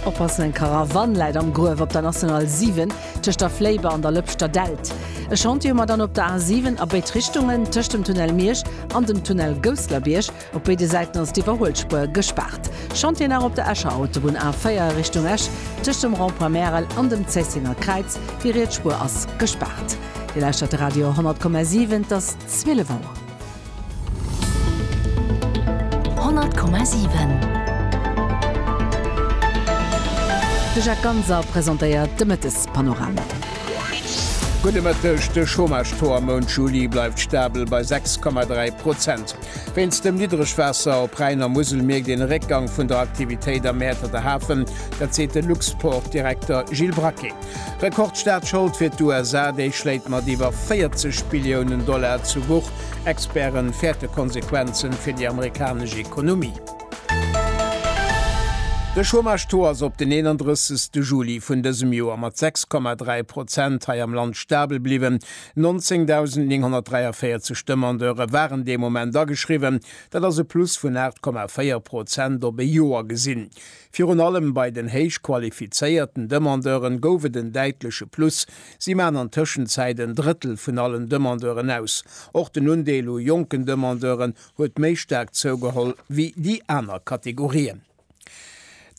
Oppassen, eng Karawann läit am Gruef op der National 7 tëscht der Fléiber an der Lëpschter Delt. E Chantier hu mer dann op der A 7 a béid Richtungen, tëscht dem Tunnel Miersch an dem Tunnel Gousslerbierg. Op béide Säiten ass d'Iwwerhuelspuer gespaart. Chantier nach op der Escher Autobunn A 4 Richtung Esch, tëscht dem Rond-point Märel an dem Zéissenger Kräiz. Déi riets Spuer ass gespaart. Dir lauschtert de Radio 100,7, et ass 12 Auer. 100,7. De Jacques Ganser presentéiert de Mëttespanorama. Gudde Mëtteg, De Chômage-Taux am Mount Juli bleift stabel bei 6,3 Prozent. Wéinst dem Niddregwaasser op Rhäin a Musel mierkt een e Réckgang vun der Aktivitéit am Mäerterter Hafen. Dat seet de Luxport-Direkter Gilles Braquet. Rekordstaatschold fir d'USA, déi schléit mat iwwer 40 Billiounen Dollar zu Buch, Experte fäerte Konsequenze fir déi amerikanesch Ekonomie. De Chômage-Taux ass op den 31 Juli vun dësem Joer mat 6,3 Prozent hei am Land stabel bliwwen. 19.943 Demandeure waren dee Moment ageschriwwen, dat ass e Plus vun 8,4 Prozent op e Joer gesinn. Virun allem bei den héich qualifizéierten Demandeuren gouf et en däitleche Plus, si maachen an Tëschenzäit en Drëttel vun allen Demandeuren aus. Och den Undeel u jonken Demandeuren huet méi staark zougeholl wéi déi aner Kategorien.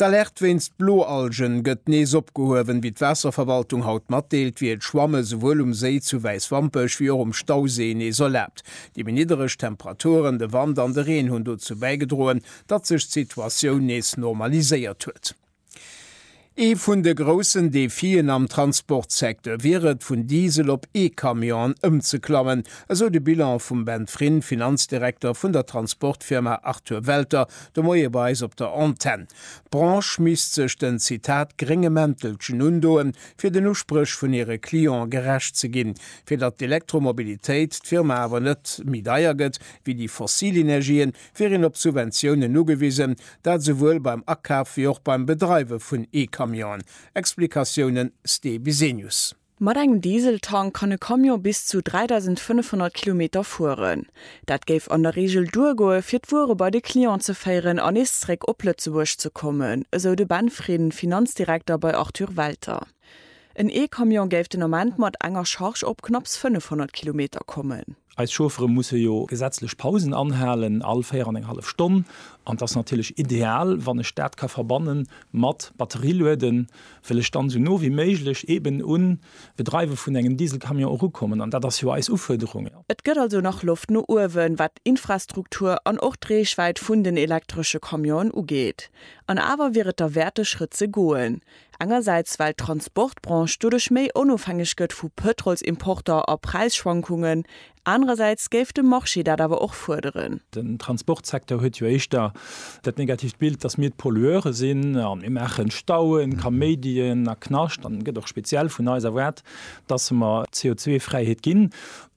D'Alerte wéinst Bloalgen gëtt nees opgehuewen. Wéi d'Waasserverwaltung haut matdeelt, wier d'Schwamme souwuel um Séi zu Wäiswampech wéi och um Stausee nees erlaabt. Déi méi niddereg Temperaturen, de Wand an de Reen hunn dozou bäigedroen, datt sech d'Situatioun nees normaliséiert huet. Ee vun de groussen Defien am Transportsecteur wier et, vun Diesel op E-Camionen ëmzeklammen, esou de Bilan vum Ben Frin, Finanzdirekter vun der Transportfirma Arthur Welter, de Moie bei eis op der Antenn. D'Branche misst sech den, Zitat, grénge Mäntelchen undoen, fir den Uspréch vun hire Clientë gerecht ze ginn. Fir datt d'Elektromobilitéit d'Firma awer net méi deier gëtt wéi déi fossil Energien, wier een op Subventiounen ugewisen, dat esouwuel beim Akaf wéi och beim Bedreiwe vun E-Camionen. Explikatiounen, Ste Bisenius. Mat engem Dieseltank kann e Camion bis zu 3.500 Kilometer fueren. Dat géif an der Reegel duergoe fir d'Wuere bei de Client ze féieren an nees zréck op Lëtzebuerg ze kommen, esou de Ben Frieden, Finanzdirekter bei Arthur Welter. En E-Camion géif den Ament mat enger Charge op knapps 500 Kilometer kommen. Eis Chauffere musse jo gesetzlech Pausen anhalen, all véier an eng hallef Stonn. An et ass natierlech ideal, wann ech dat ka verbanne mat Batterie lueden, wëll ech dann esou no wéi méiglech eben un d'Bedreiwe vun engem Dieselcamion erukommen. An dat ass jo eis Ufuerderung. Et gëtt also nach Loft no uewen, wat d'Infrastruktur an och d'Reechwäit vun den elektresche Camionen ugeet. An awer wier et derwäert, de Schrëtt ze goen. Engersäits well d'Transportbranche doduerch méi onofhängeg gëtt vu Pëtrolsimporter a Präisschwankungen, anerersäits géif de Marché dat awer och fuerderen. Den Transportsecteur huet jo éischter dat negatiivt Bild, datt mir d'Pollueure sinn a mir maachen Stauen, Kaméidien a Knascht an et gëtt och speziell vun eis erwaart, datt mer d'CO2-Fräiheet ginn.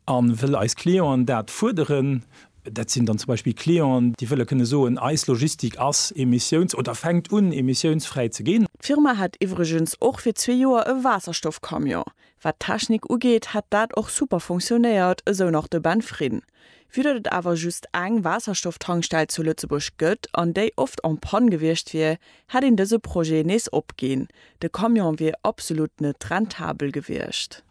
A wëll eis Clienten dat fuerderen, Dat sinn dann zum Beispill Clienten, déi wëlle kënne soen, eis Logistik ass emissiouns oder fänkt un, emissiounsfräi ze ginn. D'Firma hätt iwwregens och fir zwee Joer e Waasserstoff-Camion. Wat d'Technik ugeet, hätt dat och super funktionéiert, esou nach de Ben Frin. Vue datt et awer just eng Waasserstoff-Tankstell zu Lëtzebuerg gëtt an déi oft en panne gewiescht wier, hätt een dëse Projet nees opginn, de Camion wier absolut net rentabel gewiescht.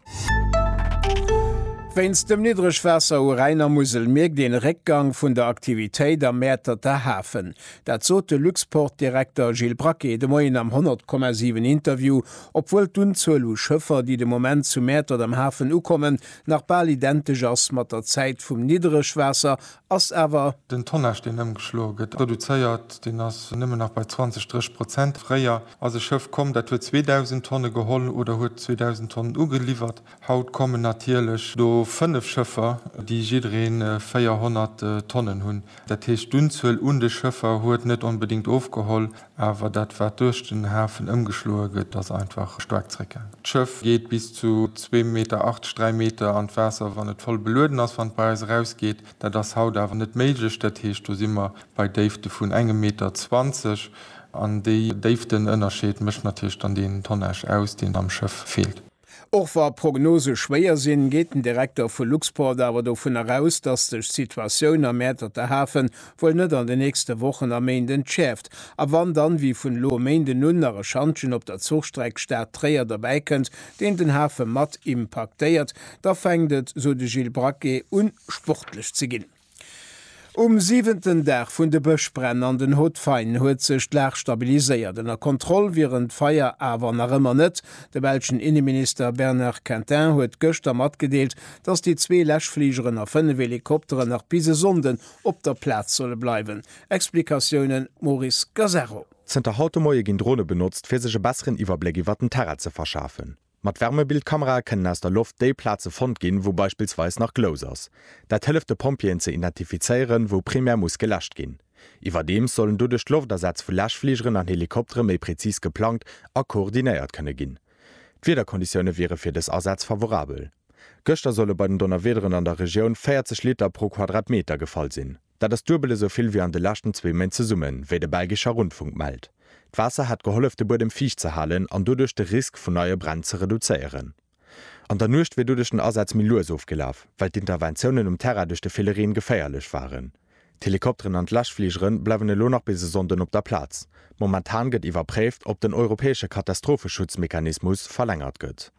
Wéinst dem Niddregwaasser u Rhäin a Musel mierkt een e Réckgang vun der Aktivitéit am Mäerterter Hafen. Dat sot de Luxport-Direkter Gilles Braquet de Moien am 100,7 Interview, obwuel d'Unzuel u Schëffer, déi de Moment zu Mäertert am Hafen ukommen, nach bal identesch ass mat der Zäit vum Niddregwaasser ass awer. Den Tonnage deen ëmgeschloe gëtt, reduzéiert, deen ass nëmmen nach bei 20, 30 Prozent. Fréier ass e Schëff komm, dat huet 2.000 Tonne geholl oder huet 2.000 Tonnen ugeliwwert. Haut kommen natierlech do 5 Schëffer, déi jidderee 400 Tonnen hunn. Dat heescht, d'Unzuel un de Schëffer huet net onbedéngt ofgeholl, Awer dat wat duerch den Hafen ëmgeschloe gëtt, ass einfach staark zeréckgaangen. D'Schëff geet bis zu zwee Meter 80, dräi Meter an d'Waasser, wann et voll belueden ass, wann et bei eis erausgeet. Dat ass haut awer net méiglech. Dat heescht, do si mer bei Déifte vun engem Meter zwanzeg. An dee Déiftenënnerscheed mécht natierlech dann deen Tonnage aus, deen am Schëff feelt. Och wa Prognose schwéier sinn, geet den Direkter vu Luxport awer dovunner aus, datt sech d'Situatioun am Mäerterter Hafen wuel net an de nächste Wochen a Méint entschäerft, a wann dann, wéi vun elo e Méinden un, nach e Schantjen op der Zuchstreck Stad-Tréier derbäi kënnt, deen den Hafe mat impaktéiert, da fänkt et, sou de Gilles Braquet un sportlech ze ginn. Um siwenten Dag vun de Bëschbränn an den Hautes-Fagnes huet sech d'Lag stabiliséiert, ënner Kontroll wieren d'Feier awer nach ëmmer net. De belschen Inneminister Bernard Quintin huet gëschter matgedeelt, datt déi zwee Läschfligeren a fënnef Helikopteren nach bis e Sonnden op der Plaz solle bleiwen. Explikatiounen, Maurice Gasarro. Zënter haut de Moie ginn Drone benotzt, fir sech e besseren Iwwerbléck iwwert den Terrain ze verschafen. Mat Wärmebildkamerae kënnen aus der Loft déi Plaze fonnt ginn, wou beispillsweis nach Glous ass. Dat hëlleft de Pompjeeën ze identifizéieren, wou primär muss geläscht ginn. Iwwerdeems sollen doduerch d'Loftasätz vu Läschfligeren an Helikoptere méi prezis geplangt a koordinéiert kënne ginn. D'Wiederkonditioune wiere fir dës Asätz favorabel. Gëschter solle bei den Donnerwiederen an der Regioun 40 Liter pro Quadratmeter gefall sinn. Dat ass duebel esou vill wéi an de leschten zwee Méint zesummen, wéi de belgescher Rundfunk mellt. D'Waasser hätt gehollef de Buedem fiicht ze halen an doduerch de Risk vun neie Bränn ze reduzéieren. An der Nuecht wier doduerch den Asaz méi lues ofgelaf, well d'Interventiounen um Terrain duerch de ville Reen geféierlech waren. D'Helikopteren an d'Läschfligere bleiwen elo nach bis e Sonnden op der Plaz. Momentan gëtt iwwerpréift, ob den europäesche Katastropheschutzmechanismus verlängert gëtt.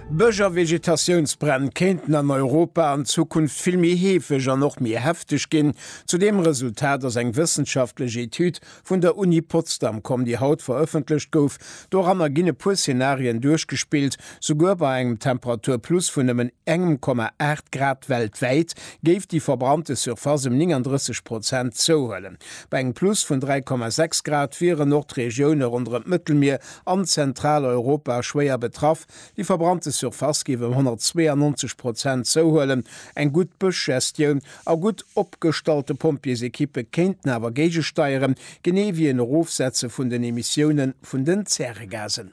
Bësch a Vegetatiounsbränn kéinten an Europa an Zukunft vill méi heefeg an och méi hefteg ginn. Zu deem Resultat ass eng wëssenschaftlech Etüd vun der Uni Potsdam komm, déi haut verëffentlecht gouf. Doranner ginn e puer Zenarien duerchgespillt, Souguer bei engem Temperaturplus vun nëmmen engem Komma aacht Grad weltwäit géif déi verbrannte Surface ëm 39 Prozent zouhuelen. Bei engem Plus vun dräi Komma sechs Grad wieren och d'Regioune ronderëm d'Mëttelmier an Zentraleuropa schwéier betraff, déi verbrannte Surface géif ëm 192 Prozent zouhuelen. Eng gutt Bëschgestioun a gutt opgestallte Pompjeesekippe kéinten awer géigesteieren, genee wéi en Erofsetze vun den Emissioune vun den Zäregasen.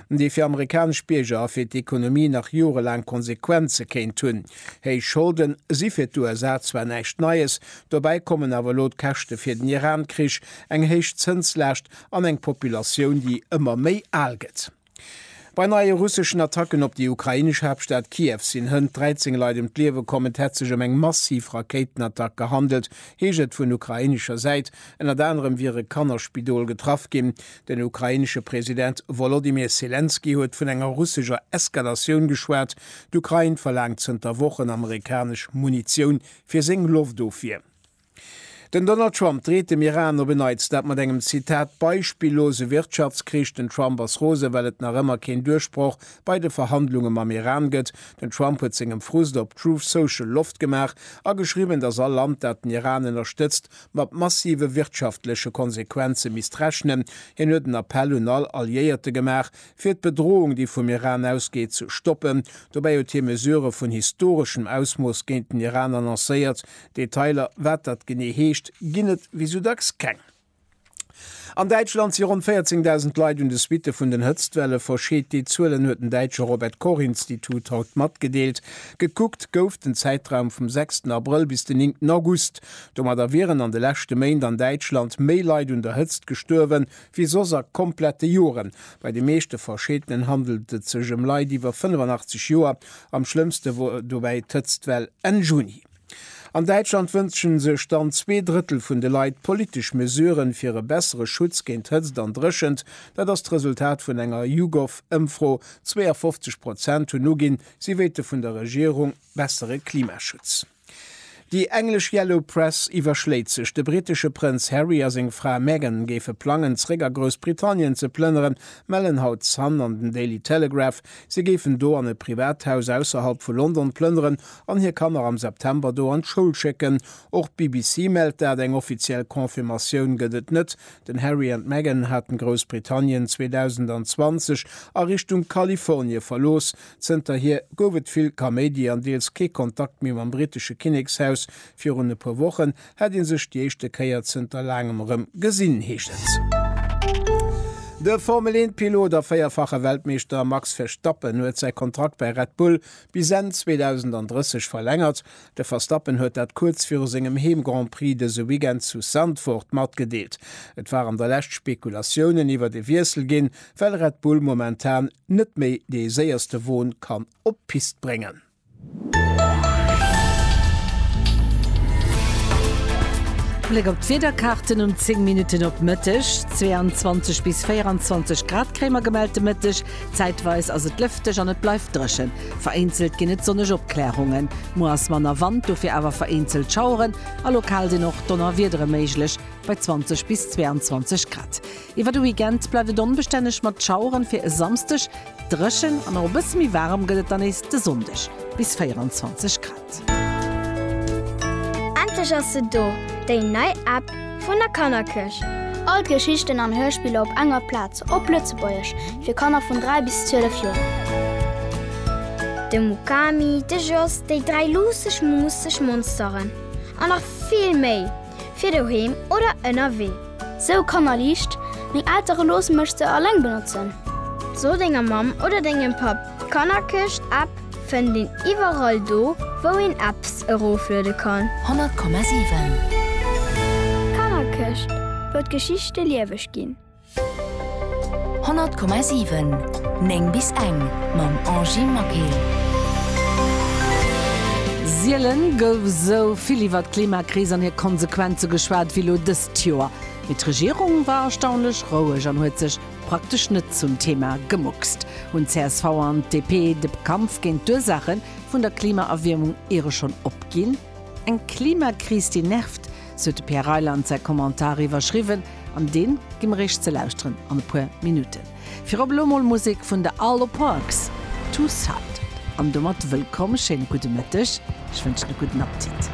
déi fir amerikanesch Bierger a fir d'Ekonomie nach jorelaang Konsequenze kéint hunn. Héich Scholden si fir d'USA zwar näischt Neies, dobäi kommen awer elo d'Käschte fir den Iran-Krich, eng héich Zënslaascht an eng Populatioun, déi ëmmer méi al gëtt. Bei neie russeschen Attacken op déi ukrainesch Haaptstad Kiew sinn hënt 13 Leit ëm d'Liewe komm. Et hätt sech ëm eng massiv Rakéitenattack gehandelt, heescht et vun ukrainescher Säit. Ënnert anerem wiere Kannerspidol getraff ginn. Den ukrainesche President Wolodymyr Selenskyj huet vun enger russescher Eskalatioun geschwat. D'Ukrain verlaangt zënter Wochen amerikanesch Munitioun fir seng Loftofwier. Den Donald Trump dreet dem Iran op en Neits dat mat engem Zitat beispillose Wirtschaftskrich. Den Trump ass rose well et nach ëmmer keen Duerchbroch bei de Verhandlunge mam Iran gëtt. Den Trump huet sengem Frust op Truth Social Loft gemaach a geschriwwen, datt all Land dat den Iran ënnerstëtzt mat massive wirtschaftleche Konsequenze misst rechnen. Hien huet en Appell un all Alliéierte gemaach, fir d'Bedrohung, déi vum Iran ausgeet, ze stoppen. Dobäi huet hie Mesurë vun historeschem Ausmooss géint den Iran annoncéiert. Detailer, wat dat genee heescht, ginn et wéi sou dacks keng. An Däitschland si ronn 14.000 Leit un de Suitte vun den Hëtztwelle verscheet. Déi Zuelen huet den däitsche Robert Koch Institut haut matgedeelt. Gekuckt gouf den Zäitraum vum sechsten Abrëll bis den néngten August. Domadder wieren an de leschte Méint an Däitschland méi Leit un der Hëtzt gestuerwen, wéi soss a komplette Joren. Bei de meeschte Verscheetenen handelt et sech ëm Leit iwwer 85 Joer. Am schlëmmste wor dobäi d'Hëtztwell Enn Juni. An Däitschland wënschen sech dann zwee Drëttel vun de Leit politesch Mesuren, fir e bessere Schutz géint Hëtzt an Dréchent. Dat ass d'Resultat vun enger YouGov-Ëmfro. 52 Prozent hunn uginn, si wéilte vun der Regierung bessere Klimaschutz. Déi englesch Yellow Press iwwerschléit sech, de brittesche Prënz Harry a seng Fra Meghan géife plangen, zeréck a Groussbritannien ze plënneren, mellen haut d'Sun an den Daily Telegraph. Si géifen do an e Privathaus ausserhalb vu London plënneren, an hir Kanner am September do an d'Schoul schécken. Och d'BBC mellt dat, eng offiziell Confirmatioun gëtt et net. Den Harry an d'Meghan haten Groussbritannien 2020 a Richtung Kalifornie verlooss. Zënterhier gouf et vill Kaméidi an deels kee Kontakt méi mam brittesche Kinnekshaus. Virun e puer Wochen hätt ee sech déi éischte Kéier zënter laangem erëm gesinn, heescht et. De Formel-Eent-Pilot a véierfache Weltmeeschter Max Verstappen huet säi Kontrakt bei Red Bull Bis Enn 2030 verlängert. De Verstappen huet dat kuerz viru sengem Heem-Grand-Prix dëse Weekend zu Zandvoort matgedeelt. Et waren der lescht Spekulatiounen iwwert e Wiessel ginn, well Red Bull momentan net méi dee séierste Won kann op d'Pist bréngen. Bléck op d'Wiederkaarten um 10 Minutten op Mëtteg, 22 bis 24 Grad kréie mer gemellt de Mëtteg, Zäitweis ass et lëfteg an et bleift dréchen. Vereenzelt ginn et sonneg Opklärungen. Muer ass manner Wand, dofir awer vereenzelt Schaueren a lokal sinn och Donnerwiedere méiglech bei 20 bis 22 Grad. Iwwer de Weekend bleift et onbestänneg mat Schaueren, fir e Samsdeg dréchen an och e bësse méi waarem gëtt et dann nees de Sonndeg, bis 24 Grad. Endlech ass se do, déi nei App vun der Kannerkirch! All d'Geschichten an Hörspiller op enger Plaz, op Lëtzebuergesch, fir Kanner vun 3 bis 12 Joer. De Mukami, de Jos, déi dräi luusseg, muusseg Monsteren an nach vill méi! fir doheem oder ënnerwee. Sou Kannerliicht, Meng Eltere loosse mech se alleng benotzen. So denger Mamm oder dengem Papp, d'Kannerkëscht App fënnt een iwwerall do wou een Apps erofluede kann. 100,7. D'Kannerkëscht, wou d'Geschichte lieweg ginn. 100,7 9 bis eng mam Angie Maquet. Sielen gouf esou vill iwwer d'Klimakris an hir Konsequenze geschwat wéi elo dëst Joer. Mee d'Regierung war erstaunlech roueg an huet sech praktesch net zum Thema gemuckst. Hunn csv an DP de Kampf géint d'Ursaache vun der Klimaerwiermung iere schonn opginn? Eng Klimakris déi nervt, Sou huet de Pierre Reyland säi Kommentar iwwerschriwwen an deen gi mer eech ze lauschteren an e puer Minutten. Virop elo mol Musek vun The Arlo Parks, Two Sided. An domat wëllkomm, schéine gudde Mëtteg, ech wënschen e gudden Appetit.